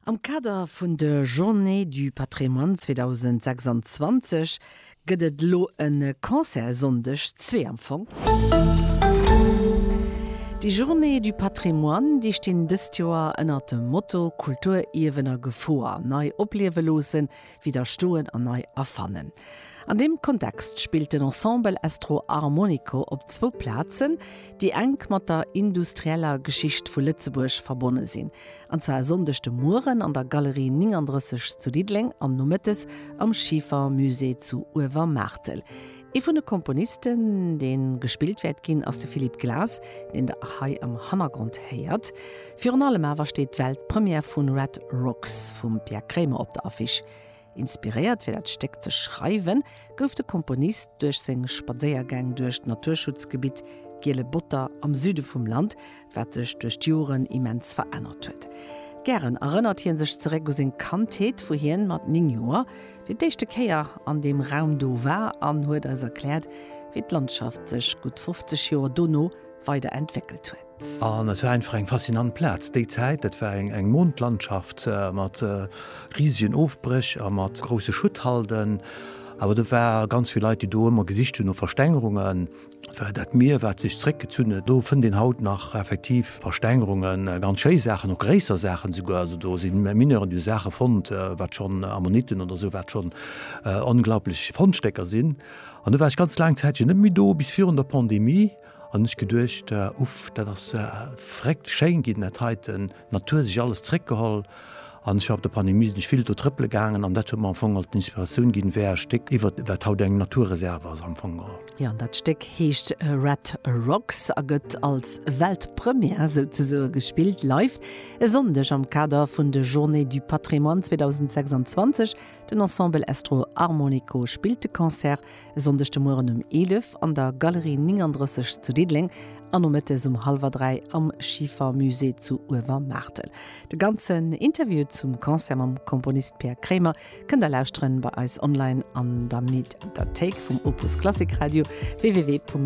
Am Kader vun de Journées du Patrimoine 2026 gëtt et elo e Concert Sonndeg zwee am Fong. Déi Journées du Patrimoine, déi stinn dëst Joer ënnert dem Motto Kulturierwen a Gefor, nei opliewe loossen. widderstoen an nei erfannen. An deem Kontext spillt den Ensemble Estro Armonico op zwou Plazen, déi enk mat der industrieller Geschicht vu Lëtzebuerg verbonne sinn, an zwar e Sonndeg de Mueren an der Galerie 39 zu Diddeleng an nomëttes am Schiefermusée zu Uewermaartel. Ee vun de Komponisten, dee gespillt wäert ginn, ass de Philippe Glass, deen Der hei am Hannergrond héiert. Virun allem awer steet d'Weltpremière vu Red Rocks vum Pierre Kremer op der Affiche. Inspiréiert fir dat Stéck ze schreiwen, gouf de Komponist duerch seng Spadséiergäng duerch d'Naturschutzgebitt Giele Botter am Süde vum Land, wat sech duerch d'Joren immens verännert huet. Gären erënnert hie sech zeréck u seng Kandheet, wou hien mat 9 Joer fir d'éischte Kéier an deem Raum do war an huet eis erkläert, wéi d'Landschaft sech gutt 50 Joer dono weider entwéckelt huet. An et war einfach eng faszinant Plaz. Déi Zäit, dat war eng Mondlandschaft mat risigen Ofbréch a mat grousse Schutthalden. Awer do ware ganz vill Leit, déi do ëmmer gesicht hunn no Verstängerungen. Well dat Mier, wat sech zréckgezunn huet, do fënnt een haut nach effektiv Verstängerungen, ganz schéi Saachen, och gréisser Saachen esouguer. Also do si Mineuren, déi hu Saache fonnt, wat schonn Ammonitten oder esou, wat schonn onglaublech Fondstécker sinn. An du war ech ganz laang Zäitchen net méi do, bis virun der Pandemie. An hunn ech geduecht, Uff, dat ass verréckt schéin ginn, dat heiten, d'Natur sech alles zréckgeholl. An ech war op der Pandemie sinn ech vill do trëppele gaangen an dat huet mer am Fong alt d'Inspiratioun ginn wär e Stéck iwwert wat haut eng Naturreserve ass am Fong all. Jo an dat Stéck heescht Red Rocks a gëtt als Weltpremière souzesoe gespillt live e Sonndeg am Kader vun de Journées du Patrimoine 2026. Den Ensemble Estro Armonico spillt de Concert E Sonndeg de Mueren um 11 an der Galerie 39 zu Diddeleng an nomëttes um hallwer 3 am Schifa Musée zu Uewermaartel. De ganzen Interview zum Concert mam Komponist Peer Krémer kënnt der lauschteren bei eis online an der Mediathéik vum Opus Klassik Radio, www.opus.radio.